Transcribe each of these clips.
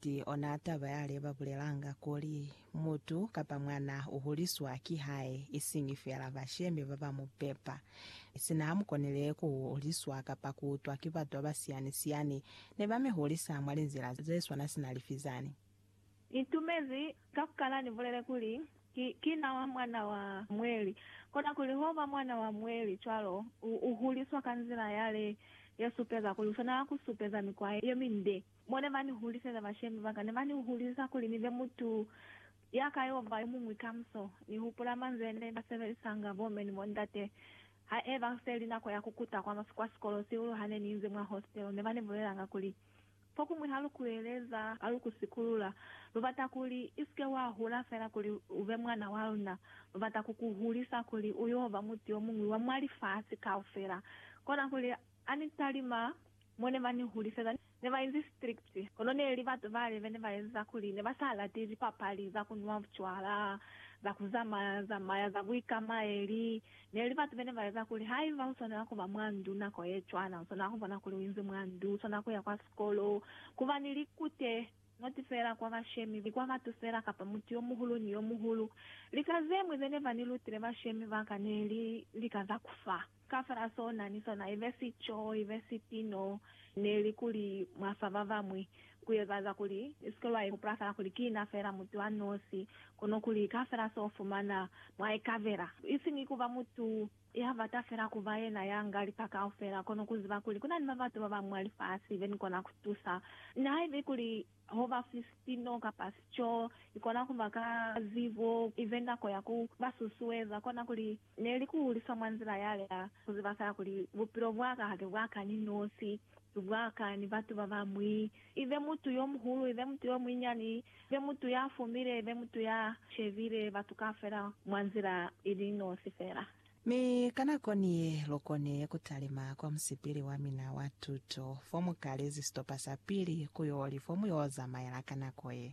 Ki ona taba yale ba bulelanga kuli, Mutu kapa mwana u huliswa ki hae, isiñi feela bashemi ba ba mu pepa. Sina ha mu konile ku huliswa kapa ku utwa ki batu ba ba siyani-siyani, ne ba mi hulisa mwa linzila ze swana sina lifi zani? Ni tumezi ka ku kala ni bulele kuli, Ki, ki na wa mwana wa Mweli. Kona kuli ho ba mwana wa Mweli cwalo, u, u huliswa ka nzila yale ye supeza kuli u swanela ku supeza mikwa ye minde. Mo ne ba ni huliseza bashemi ba ka, ne ba ni hulisa kuli ni be mutu ya ka yo ba yo muñwi kamuso. Ni hupula manzwi a ne ba sebelisanga bo m'e ni bo ndate ha e ba se li nako ya ku kuta kwa sikolo sihulu ha ne ni inzi mwa hostelo. Ne ba ni bulelanga kuli, Fokuñwi ha lu ku eleza ba lu ku sikulula. Lu bata kuli i si ke wa hula fela kuli u be mwana wa luna. Lu bata ku ku hulisa kuli u yo ba mutu yo muñwi wa mwa lifasi kaufela, kona kuli Ha ni sa li ma, mo ne ba ni huliseza ne ba inzi strict. Kono ne li batu bale be ne ba eza kuli ne ba sa lati lipapali za ku nwa bucwala, za ku zamaya zamaya, za buikamaeli. Ne li batu be ne ba eza kuli haiba u swanela ku ba mwa ndu nako ye cwana, u swanela ku bona kuli u inzi mwa ndu, u swanela ku ya kwa sikolo, ku ba ni likute, not fela kwa bashemi, ni kwa batu fela kapa mutu yo muhulu ni yo muhulu. Lika ze ñwi ze ne ba ni lutile bashemi ba ka ne li lika za ku fa. Kafel'a sona ni sona, ibe sico, ibe sipino, neli kuli mwa fa babañwi, kuezaaza kuli ni sike lwa ihupula fela kuli ki na fela mutu a nosi, kono kuli kafel'a so fumana mwa ikabela. Isiñi kuba mutu ya bata fela kuba yena ya nga lika kaufela, kono kuziba kuli kuna ni babatu babañwi mwa lifasi benikona kutusa, nihaibe kuli Ho ba si sipino kapa sico, i kona ku ba ka zibo, i be nako ya ku ba susueza. Kona kuli, ne li ku hulisa mwa nzila ya lika ku ziba fela kuli bupilo bwa ka ha ki bwa ka ni nosi, ki bwa ka ni batu ba bañwi, i be mutu yo muhulu, i be mutu yo munyinyani, i be mutu ya fumile, i be mutu ya shebile batu kaufela mwa nzila i li nosi fela. Mi ka nako ni ye, lu koni ku talima kwa musipili wa mina wa tuto, fo mu kalezi sitopa sa pili ku y'o li fo mu y'o zamaela ka nako ye.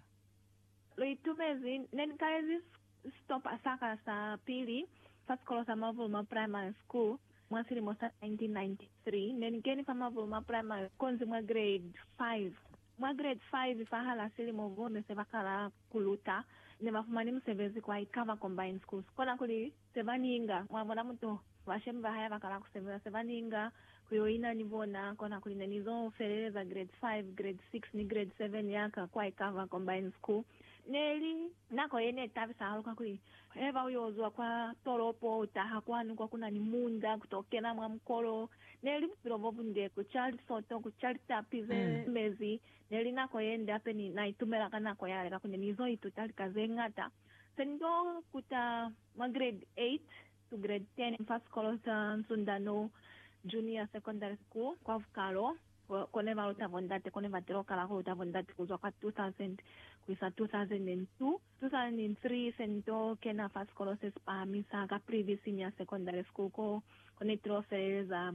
Lu itumezi. Ne ni kalezi sitopa sa ka sa pili fa sikolo sa Mavuluma Primary School mwa silimo sa 1993. Ne ni keni fa Mavuluma Primary konzi mwa grade 5. Mwa grade 5, fahal'a silimo bo ne se ba kala ku luta, ne ba fumani musebezi kwa Ikava Combined Schools, kona kuli, se ba ninga, mwa bona mutu, bashemi ba hae bakala ku sebeza se ba ninga ku yo ina ni bona, kona kuli ne ni zo feleleza grade 5, grade 6 ni grade 7 ya ka kwa Ikava Combined School. Ne li nako ye ne tabisa hahulu kakuli he ba u yo zwa kwa tolopo u taha kwanu kwa ku na ni munda ku to kena mwa mukolo. Ne li bupilo bo bunde, ku ca lisoto, ku ca litapi ze mezi. Ne li nako ye nde hape ni na itumela ka nako yale kakuli ne ni zo ituta lika ze ñata. Pendo kuta mwa grade 8 to grade 10 fa sikolo sa Nsundano Junior Secondary School kwa Vukalo, ko ne ba luta bondate. Ko ne ba tilo kala ku luta bondate ku zwa kwa 2000 ku isa 2002. 2003 se ni to kena fa sikolo se si pahamisa, Caprivi Senior Secondary School, ko ne tilo feleleza.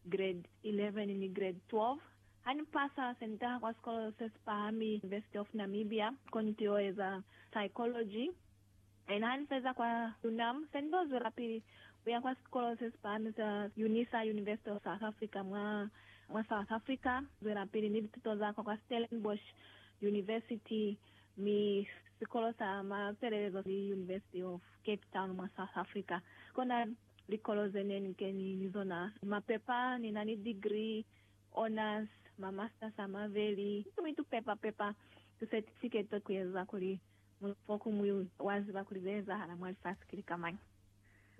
Grade 11 ni Grade 12. Ha ni pasa, se ni taha kwa sikolo se si pahami, University of Namibia, ko ni t'il'o eza Psychology. Ena ha ni feza kwa UNAM, se ni t'o zwelapili ku ya kwa sikolo se si pahami sa Unisa, University of South Africa, mwa mwa South Africa, zwelapili ni lituto za ka kwa Stellenbosch University, mi sikolo sa mafelelezo ki University of Cape Town mwa South Africa. Kona. Likolo ze ne ni keni ni zona, mapepa, ni na ni degree, honours, ma masters a maveli, mi tu pepa pepa tu certificate ku eza kuli mutu fokuñwi wa ziba kuli ze ezahala mwa lifasi ki lika mañi.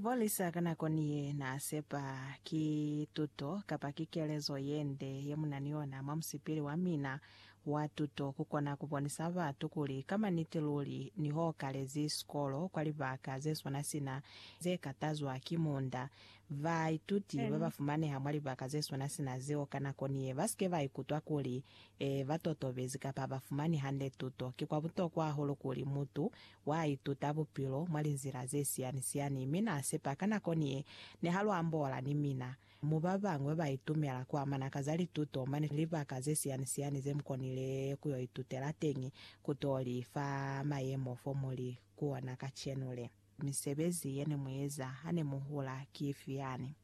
Polisa ka nako ni ye naa sepa ki tuto kapa ki kelezo ye nde ye mu na ni yona mwa musipili wa mina wa tuto ku kona ku bonisa batu kuli ka maniti luli ni ho kalezi sikolo kwa libaka ze swana sina ze ka tazwa ki munda, ba ituti ba ba fumaneha mwa libaka ze swana sina zeo ka nako ni ye ba si ke ba ikutwa kuli ba totobezi kapa ha ba fumani hande tuto. Ki kwa butokwa hahulu kuli mutu wa ituta bupilo mwa linzila ze siyani-siyani mi na sepa ka nako ni ye ne ha lu ambola ni mina. Mu babañwi ba itumela ku amana ka za lituto mane libaka ze siyani-siyani ze mu konile ku yo itutela teñi ku to li fa mayemo fo mu li ku ona kacenu le. Misebezi ye ne mu eza ha ne mu hula ki ifi yani?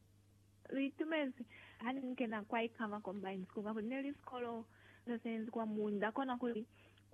Lu itumezi ha ne mu kena kwa Ikama Combined School, kakuli ne li sikolo se señezi kwa munda, kona kuli,